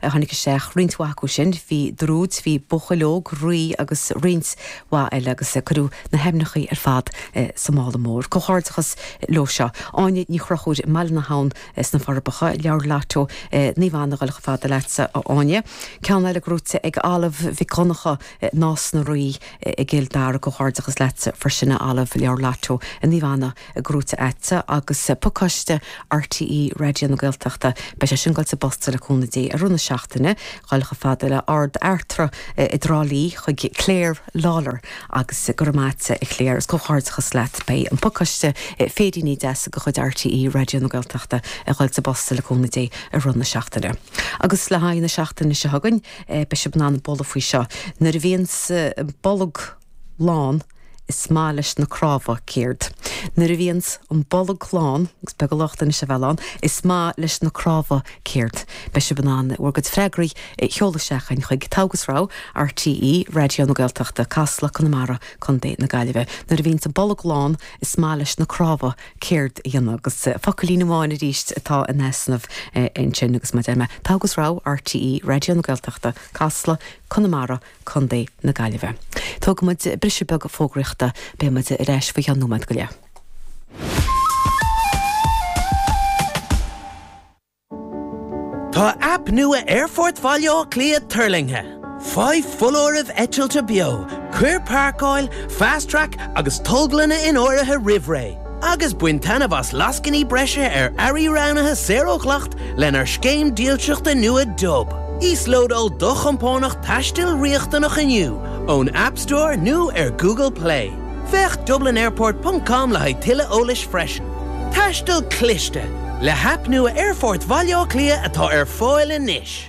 Tháinig isteach roinnt mhaith acu sin, bhí druid, bhí buachaill óg, Rí agus roinnt mhaith eile agus cuireadh na haimneachaí ar fad sa mála mór. Comhghairdeachas leo seo. Áine Ní Chonchúir i mBaile na hAbhann sna Forbacha, leabhar Lotto Naomh Anna ag goil chomh fada leatsa a Áine. Ceann eile gnóite ag Olive Mhic Dhonncha, Nás na Rí i gCill Dara, comhghairdeachas leatsa freisin a Olive, leabhar Lotto Naomh Anna gnóite agat agus pacáiste RTÉ Raidió na Gaeltachta, beidh sé sin ag goil sa bposta le cúnamh Dé i rith na seachtaine. Ag goil chomh fada le hArd Fhearta i dTrá Lí chuig Claire Lawlor agus go raibh maith agat, a Claire, is comhghairdeachas leat. Beidh an pacáiste féiríní deasa de chuid RTÉ Raidió na Gaeltachta ag goil sa bposta le cúnamh Dé i rith na seachtaine. Agus le haghaidh na seachtaine seo chugainn, beidh sibh in ann bualadh faoi seo, Nuair a bhíonns an bolg. lán, is maith leis na cnámha céard. Nuair a bhíonns an bolg lán, agus beag a locht anois a bheith lán, is maith leis na cnámha céard. Beidh sibh in ann bhur gcuid freagraí a sheoladh isteach againn chuig, Togha agus Rogha, RTÉ Raidió na Gaeltachta, Casla, Conamara, Co na Gaillimhe. Nuair a bhíonns an bolg lán, is maith leis na cnámha céard a dhéanamh. Agus focailín amháin arís atá in easnamh ansin agus mar a deir mé, Togha agus Rogha, RTÉ Raidió na Gaeltachta, Casla, Conamara, Co. na Gaillimhe. Tógfaidh muid briseadh beag fógraíochta. Beidh muid ar ais faoi cheann nóiméad go leith. Tá aip nua Aerfort Bhaile Átha Cliath tuirlingthe! Faigh foláirimh eitilte beo, cuir páirceáil, Fast Track agus tolglanna in áirithe roimh ré. agus bain taitneamh as lascainí breise ar earraí roghnaithe saor ó dhleacht lenár scéim dílseachta nua Dub. Íoslódáil do chompánach taistil riachtanach inniu ón App Store nó ar Google Play. Féach dublinairport ponc com le haghaidh tuilleadh eolais freisin. Taisteal cliste, le haip nua Aerfort Bhaile Átha Cliath atá ar fáil anois!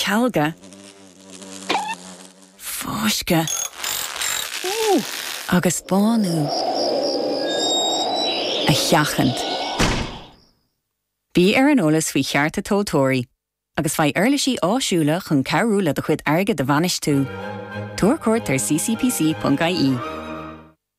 cealga, fáisceadh agus bánú a sheachaint. Bí ar an eolas faoi chearta tomhaltóirí agus faigh uirlisí áisiúla chun cabhrú le do chuid airgid a bhainistiú. Tabhair cuairt ar ccpc.ie.